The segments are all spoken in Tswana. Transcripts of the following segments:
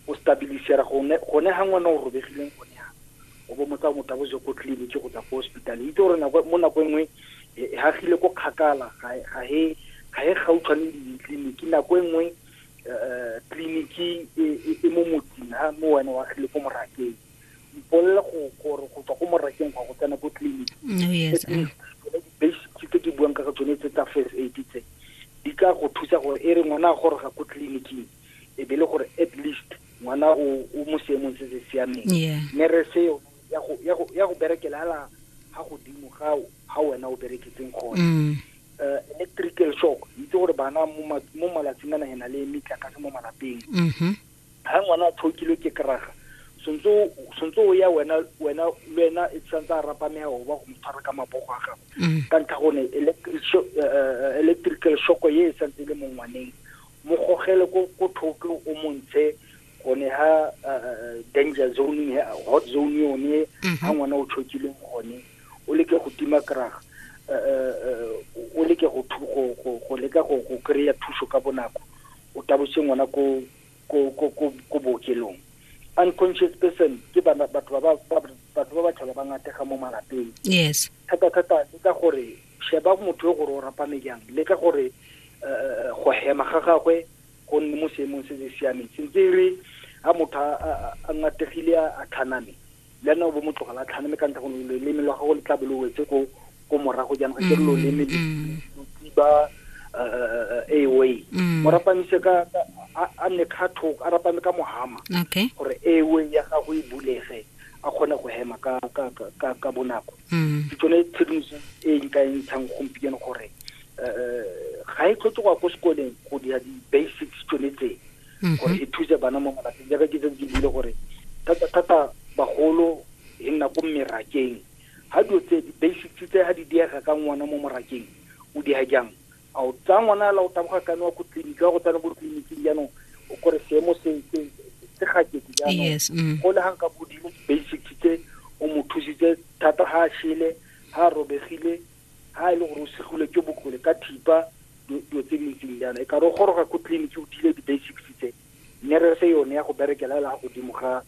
o stabilisera gone gone ha ngwana o robegileng gone ha o bo motsa motho bo je ko tleliniki go tsa ko hospital itse gore nako mo nako e nngwe e, e hagile ko kgakala ga ga he ga he gautshwane le ditleliniki nako e nngwe eh, tleliniki e, e, e mo motseng ha mo wena wa gile ko morakeng mpolela go gore go tswa ko morakeng go go tsena ko tleliniki mm, oh, yes eh. basic tse ke buang ka tsone tse tsa first aid tse di ka go thusa gore e re ngwana a goroga ko tleliniking e be le gore at least ngwana o o mo seemong se se siameng mme re seo ya go berekela ala ga godimo ga ga wena o bereketseng gone mm. eh, electrical shock itse gore bana mo malatsing a nagena le metlakase mo malapeng ga mm-hmm. ngwana a tshokilwe ke keraga sontse o ya wena wena le wena e santse a rapamea o ba go mo tshwara ka mabogo a gago mm. ka ntlha gone eh, eh, electrical shock ye e santse e le mo ngwaneng mo gogele ko ko thoko o montshe gone ha danger zone hot zone yone mhm. ha ngwana o tshokileng gone o leke go tima kraga o leke go go leka go go kry-a thuso ka bonako o tabose ngwana ko ko ko ko ko bookelong unconscious person ke batho ba batho ba ba tlhola ba ngatega mo malapeng yes thata thata ke ka gore Sheba motho yo gore o rapame jang. Leka gore go hema ga gagwe go nne mo seemong se se siameng. Sentse e re ha motho a ngategile a tlhaname, le ena o bo mo tlogela a tlhaname ka ntlha gore loleme lwa gago le tla bo lo wetse ko ko morago jaanong ga kere loleme lo tsiba airway mo rapamise ka a nne ka thoko a rapame ka mohama gore airway ya gago e bulege a kgone go hema ka ka ka ka bonako mm. ke tsone tshedimoso e nka e ntshang gompieno gore um ga e tlhoke go ya ko sekoleng go dira di-basics tsone tse mm-hmm. gore e thuse bana mo malapeng jaaka ke tse ke buile gore thata-thata bagolo e nna ko mmerakeng ga dilo tse di-basics tse ga di diega ka ngwana mo morakeng o diega jang A o tsaya ngwana ala o taboga kane wa ko tleliniki wa go tsana ko tleliniking jaanong o kore seemo se se se gakete jaanong Yes, mm. go le gang ka bodimo basics tse o mo thusitse thata ga a shele ga a robegile ga e le gore o segile ke bokole ka thipa dilo dilo tse di ntseng jaana e ka re o goroga ko tleliniki o dile di-basics tse mme re fe yone ya go berekela la godimo ga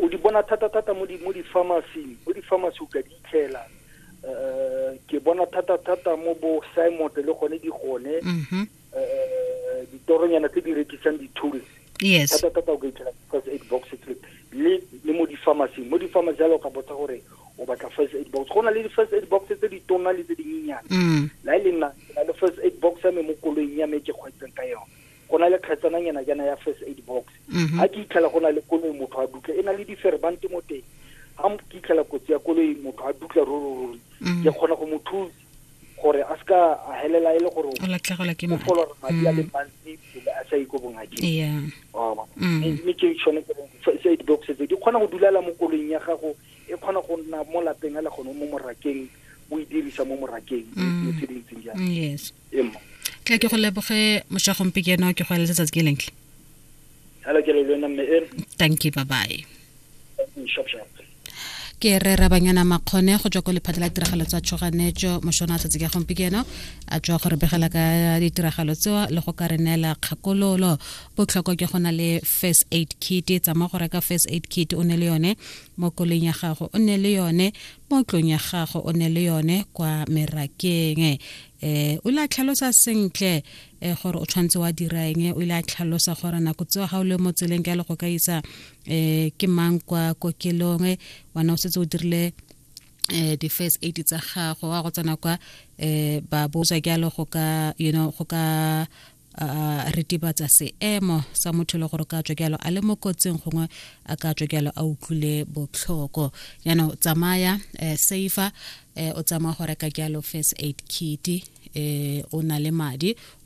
O di bona thata-thata mo di-pharmacy-ing, mo di-pharmacy o ka di itlhela um ke bona thata-thata mo bo simot le gone di gone mm-hmm. um ditoronyana tse di rekisang di-tools yes thata-thata o ka itlhela first aid box le le mo di-pharmacy mo di-pharmacy jalo ka botsa gore o batla first aid box go na le di-first aid box tse di tona le tse dinyenyana mm. la e le nna le first aid box ya me mo koloing ya me ke kgweetseng ka yone go na le kgetsananyana jaana ya first aid box mhm. ga ke itlhela go na le koloi motho a dutla e na le diferbante mo teng ga ke itlhela kotsi ya koloi motho a dutla rororori mhm. ke kgona go mo thusa gore a seka a helela e le gore o folora madi a le mhm. mantsi pele a sa iko bongakeng mme ke tshwane first aid box tse di kgona go dulela mo koloing ya gago e kgona go nna mo lapeng a le gone mo morakeng o e dirisa mo morakeng mo tse dintseng jang tla ke go leboge moshagompe ke eno ke go eletse tsatsi ke lentle thank you bye bye ke re rabanyana makgone go tswa ko lephata la tiragalo tsa tshoganetso mošona tsatsi ka gompieno a tswa go re begela ka ditiragalo tseo le go ka re neela kgakololo botlhoko ke go na le first aid kit tsamaya go reka first aid kit o ne le yone mo koleng ya gago o ne le yone mo tlong ya gago o ne le yone kwa merakeng eh o ile a tlhalosa sentle eh gore o tshwanetse wa dira eng o ile a tlhalosa gore nako tseo ga o le mo tseleng ka le go ka isa eh ke mang kwa kokelong eh, wana o setse o dirile eh di-first aid tsa gago wa go tsena kwa eh ba botswa ke a le go ka you know go ka a ritibatsa seemo sa motho le gore ka tswa a le mo kotsing gongwe a ka tswa a utlwile botlhoko jaanong tsamaya um safer um o tsamaya go reka jalo first aid kit um o na le madi